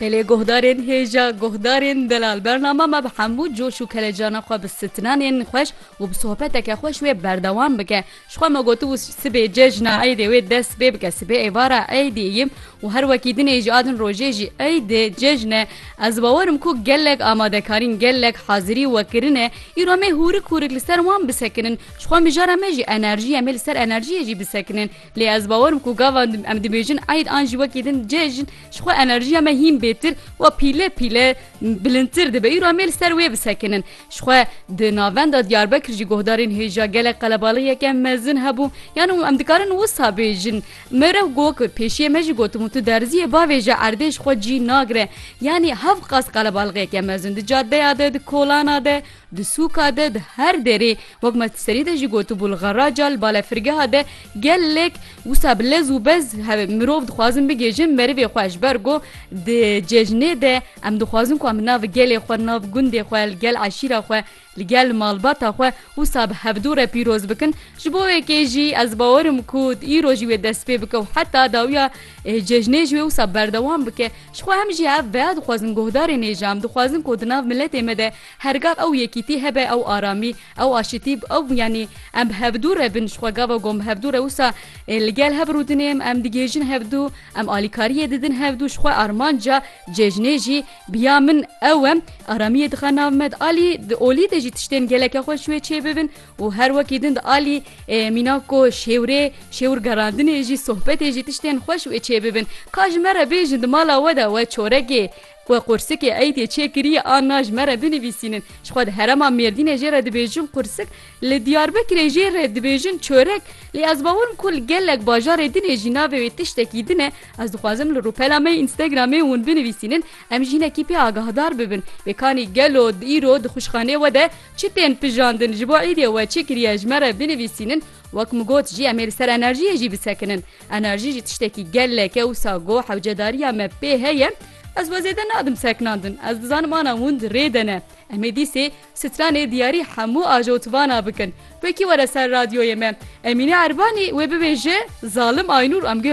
Belê guhdarên hêja guhdarên delal bernama me bi hemû coş û kelecana xwe bi stranên xweş û bi sohbeteke xweş wê berdewam bike. Ji xwe me gotibû sibê cejna eydê wê dest pê bike sibê êvara eydê yim û her wekî din ê jî a din rojê jî eyd e cejn e. Ez bawer im ku gelek amadekarîn gelek hazirî we kirine îro me hûrik hûrik li ser wan bisekinin ji xwe mijara me jî enerjî em ê li ser enerjîyê jî bisekinin. Lê ez bawer im ku gava em dibêjin eid an jî wekî din cejn ji xwe enerjiya me hîn bêtir û pîle pîle bilindtir dibe. Îro em ê li ser wê bisekinin. Ji xwe di navenda Diyarbekir jî guhdarên hêja gelek qelebalixiyeke mezin hebû. Yan em dikarin wisa bêjin. Me re got ku pêşiyê me jî gotimu tu derziyê bavêje erdê ji xwe cî nagire. Yanî hev qas qelebalixiyeke mezin di cadeya de, di kolana de, Di sûka de, di her derê, wek me ti serî de jî gotibû li xeraca, li balefirgeha de gelek wisa bi lez û bez hevê mirov dixwazin bigihîjin merivê xwe ji ber ku di cejnê de em dixwazin ku em li nav gelê xwe, li nav gundê xwe, li gel eşîra xwe, li gel malbata xwe wisa bi hevdû re pîroz bikin. Ji bo wekê jî ez bawer im ku îro jî wê dest pê bike û heta dawiya cejnê jî wê wisa berdewam bike. Jixwe em jî hev veya dixwazin guhdarê nêje em dixwazin ku di nav miletê me de Her gav ew yekîtî hebe, ew aramî, ew aşitî, ew yanî em bi hevdû re bin, ji xwe gava gon bi hevdû re wisa li gel hev rûdinê, em digihêjin hevdû, em alîkariyê didin hevdû, ji xwe armanca cejnê jî bi ya min ew e, aramiyê dixe nav me di alî, di olî de jî tiştên geleke xweş wê çêbibin û her wekî din di alî mîna ku şêwrê, şêwr gerandinê jî, sohbetê jî tiştên xweş wê çêbibin. Ka ji me re bêjin di mala we de we çorekê Ku qursikê eydê çê kiriye a na ji me re binivîsînin. Ji xwe di herema Mêrdînê jê re dibêjin qursik, li Diyarbekirê jê re dibêjin çorek. Lê ez bawer im ku li gelek bajarê dinê jî navê wê tiştekî din e. Ez dixwazim li rûpela me yê Instagramê hûn binivîsînin em ji hinekî pê agahdar bibin. Bêkanî gelo îro di xwişxanê we de çi tên pijandin ji bo eydê we çi kiriye ji me re binivîsînin. Wek min got jî em ê li ser enerjiyê jî bisekinin. Enerjî jî tiştekî gelek e wisa got hewcedariya me pê heye, Ez we zêde nadim seknandin, ez dizanim ana wind rê de ne. Em ê dîsê stranê diyarî hemû ajotibana bikin. Wekî were ser radyoyê me. Emîne Erbanî wê bibêje zalim aynûr.